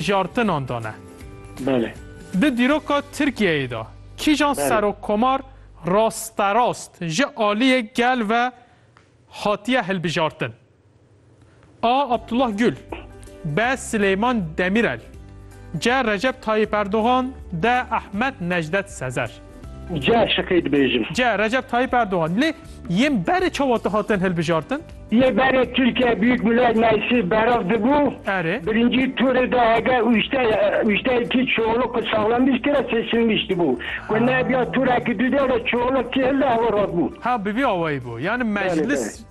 jartinan dane. Belê. Di dîroka Tirkiyeyê de kîjan Belê. serokkomar rasterast ji aliyê gel ve hatiye hilbijartin? A. Abdullah Gül B. Sileyman Demîrel C. Recep Tayyîp Erdogan D. Ehmed Necdet Sezer. Ca şikê dibêjim. Ca Recep Tayyip Erdogan. Lê yên berê çawa dihatin hilbijartin? Yê berê Tirkiye Büyük Millet Meclisi berav dibû, Erê. birincî turê de hege ûşte ûşteyekî çoğulukî saxlamiştî re seçilmiştî bû. Ku nebiya turekî dudê re çoğulukî hilde hewa rat bû. Ha bi vî awayî bû. Yanî Belê, meclis belê.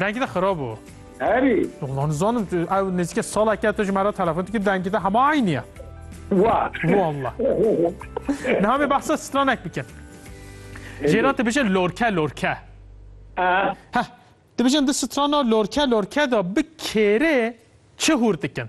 Dengê te xirab o. Herî. Ulan nizanim tu ew nêzîke saleke tu ji me re telefon dikî dengê te hema eynî ye. Wa. Walla. Niha me behsa stranek bikin. Jêra dibêje lorke lorke. Heh. Dibêjin di strana lorke lorke de bi kêrê çi hûr dikin?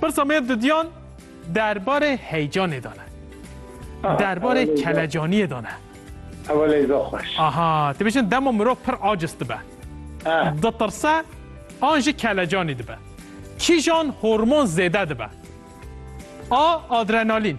Pirsa me didiyan derbarê heyecanê de ne. Derbarê kelecaniyê de ne. Ew leyza xweş. Aha, tu bêjin dema mirov pir aciz dibe. Ditirse an jî kelecanî dibe. Kîjan hormon zêde dibe? A. Adrenalîn.